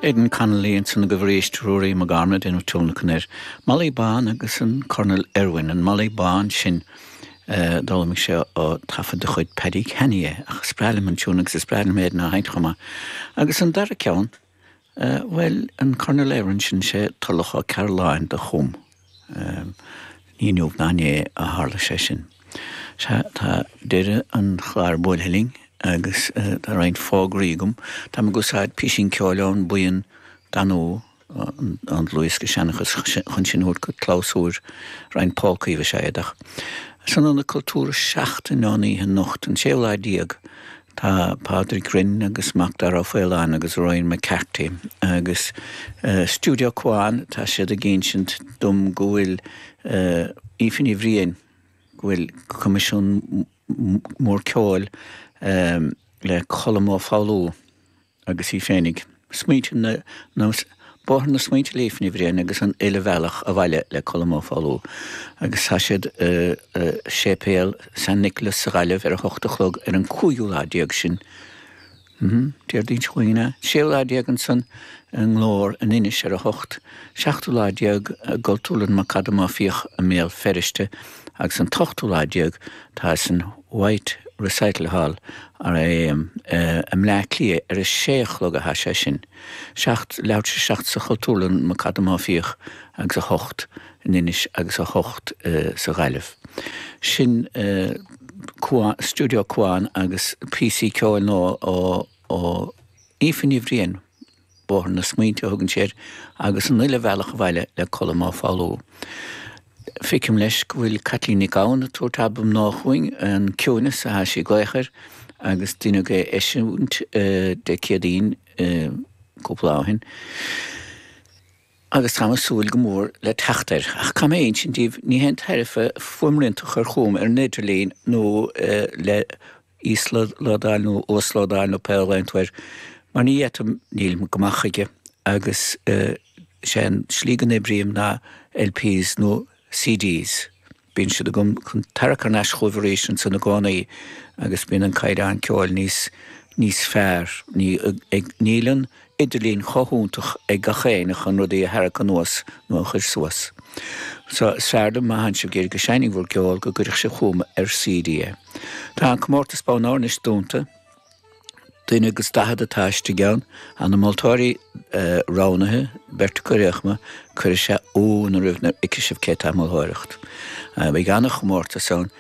Aidan Connolly, ansan agus arís Ruairí McGorman ag déanamh tionlacan air. Molly Bán agus an Cornal Irwin. An Molly Bán sin d'fhoghlaimigh sé ó thaifead de chuid Paddy Canny é, ach is breá liom an tiúin agus is breá liom Aidan á sheinnt chomh maith. Agus an dara ceann, bhuel, an Cornal Irwin sin, 'sé Toirealach Ó Cearúlláin do chum. Ní inniu ná inné a tharla sé sin. Tá deireadh an chláir buailthe linn agus tá roinnt fógraí agam. Tá mé ag úsáid pisín ceoil ón mbuíon Danú, an dlúthdhiosca Seanchas chun sinn a thabhairt go clabhsúr, roinnt polcaí is ea iad. Ach san Ionad Cultúrtha seachtain ón oíche anocht, an séú lá déag Tá Pádraig Rynne agus Macdara Ó Faoláin agus Rory McCarthy agus Stiúideo Cuan, tá siad ag insint dom go bhfuil Aoife Ní Bhriain, go bhfuil coimisiún mór ceoil le Colm Ó Foghlú agus í féinig. Smaointe nó, bóthar na smaointe le Aoife Ní Bhriain agus an uile bhealach abhaile le Colm Ó Foghlú agus tá siad i séipéal San Nicholas sa Ghaillimh ar a hocht a chlog ar an cúigiú lá déag sin Déardaoin seo chugainn, an séú lá déag ansan i nGlór in Inis ar a hocht seachtú lá déag i gCultúrlann McAdam Ó Fiaich i mBéal Feirste agus an t-ochtú lá déag tá san Whyte Recital Hall, R.I.A.M, i mBleá Cliath ar a sé a chlog atá sé sin, seacht, leathuair tar éis a seacht sa Chultúrlann McAdam Ó Fiaich agus a hocht in Inis agus a hocht sa Ghaillimh. Sin Cuan, Stiúideo Cuan agus píosaí ceoil nua ó Aoife Ní Bhriain, 'Bóthar na Smaointe' a thugann sí air, agus an uile bhealach abhaile le Colm Ó Foghlú. Feicim leis go bhfuil Caitlín Nic Gabhann ag tabhairt albam nua chugainn, 'An Ciúineas', atá sí ag glaoch air agus deineadh é a eisiúint Dé Céadaoin cúpla lá ó shin, agus táim ag súil go mór le teacht air. Ach caithfidh mé a insint daoibh, ní haon tairbhe fuaimrianta a chur chugam ar an idirlíon nó le íoslódáil nó uaslódáil nó pé ainm atá air mar ní fheicim, nílim go maith chuige agus is é an slí go n-oibrím ná LPs nó CDs, bíonn siad agam chun tarrac thar n-ais chugaibh arís ansan i gcónaí agus bíonn an caighdeán ceoil níos níos fearr, ní ag, níl an idirlíon chomh fiúntach ag gach éinne chun rudaí a tharrac anuas nó a chur suas. So, is fearr liom má tánn sibh ag iarraidh go seinnfinn bhur gceol go gcuirfeadh sibh chugam ar CD é. Tá an comórtas bonn óir anois dúnta. Duine agus daichead atá istigh ann. Tá na moltóirí roghnaithe, beirt acu riochma, cuirfidh sé ionadh oraibh nuair a fheicfidh sibh cé atá ag moltóireacht. Beidh an-chomórtas ann.